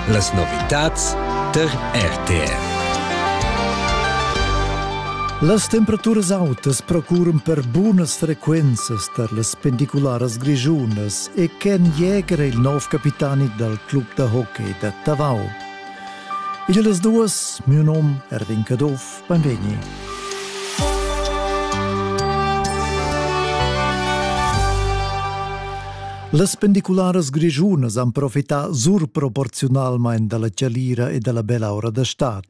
Las novitads tar RTR. Las temperaturas autas procuran per bunas frequenzas tar las pendicularas grischunas e Ken Jäger è il nov capitani dal club da hockey da Tavau. Il las duas, mio nom Erwin Caduff, Beinvegni. Las pendicularas grischunas han profità surproporziunalmain da la chalira e da la bella ora da stad.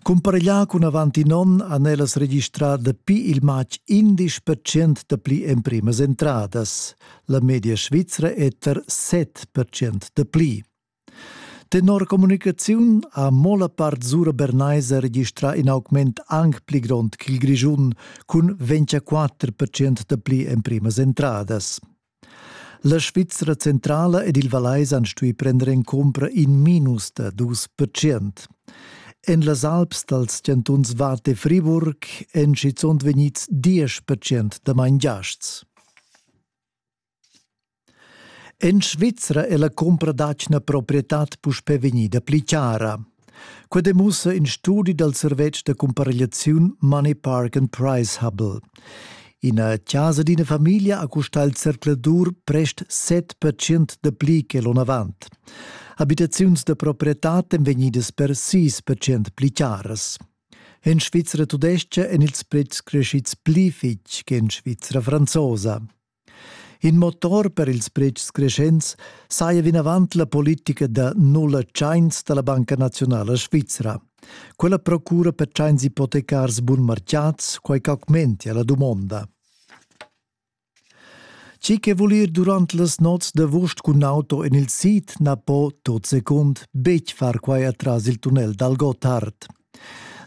Cumpareglià cun avant in onn han ellas registrà dapi il matg 11% da pli emprimas entradas. La media svizra è tar 7% da pli. Tenor communicaziun ha mo la part sura bernaiser registrà in augment anc pli grond ch'il Grischun cun 24 da pli emprimas entradas. La Svizra centrala ed il Vallais han stuì prender en cumpra in minus da dus percent. En las Alps dals chantuns Watt e Friburg èn schizunt vegnids diesch percent da mangiasts. En Svizra è la cumpra d'atgna proprietad puspè vegnida pli chara. Quai demussa in studi dal servetsch da cumparegliaziun Money Park and Price Hubble. Ina chasa d'ina famiglia ha custà il zercladur prest 7% da pli che l'onn avant. Abitaziuns da proprietad èn vegnidas per 6% pli charas. En Svizra tudestga èn ils pretschs crescids pli fitg che en Svizra franzosa. In motor per ils pretschs creschents saja vinavant la politica da nulla tschains da la Banca naziunala svizra. Quella procura per tschains ipotecars bunmarcciats quai ch'augmentia la dumonda. Chi che vul ir durant las nots d'avust cun auto en il sid na po tot secund betg far quai atras il tunnel dal Gotthard.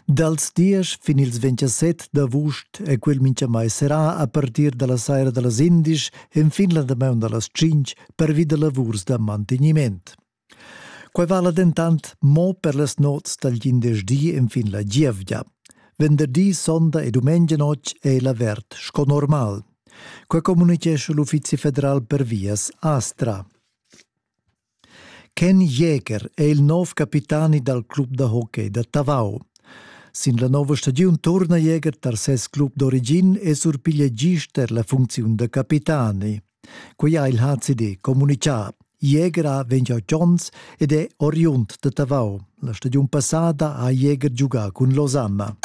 Dals diesch fin ils 27 d'avust è quel mintgamai serrà a partir da la saira da las indisch enfin la damaun da las tschintg pervi da lavurs da mantegniment. Quai vala dentant mo per las nots dal glindesdi enfin la gievgia. Venderdi, sonda e dumengia notg è l'avert sco normal. Quai communitgescha l'Uffizi federal per vias Astra. Ken Jäger è il nov capitani dal club da hockey da Tavau. Sin la nova stagiun turna Jäger tar ses club d'origin e surpiglia gist er la funcziun da capitani. Quai ha il HCD communitgà. Jäger ha 28 onns ed è oriund da Tavau. La stagiun passada ha Jäger giugà cun Losanna.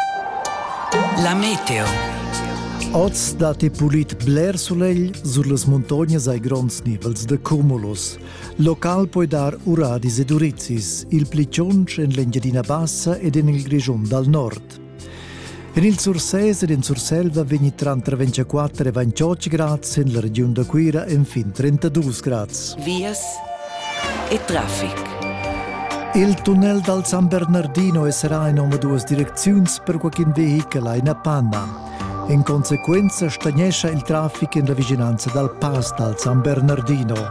La meteo. Oz dat e pulit bler sulegl, sur las muntognas hai gronds nivels da cumulus. Local poi dar uradis ed urizis, il pli tschonsch en l'Engiadina Bassa ed en il Grischun dal nord. En il Surses ed en Surselva vegni tranter 24 e 28 grads en la regiun da Cuira enfin 32 grads. Vias e traffic. Il tunnel dal San Bernardino sarà in omaduas direcziuns per qualcun vehichel a ina Panama. In conseguenza stagnescha il traffic en la vicinanza dal pass dal San Bernardino.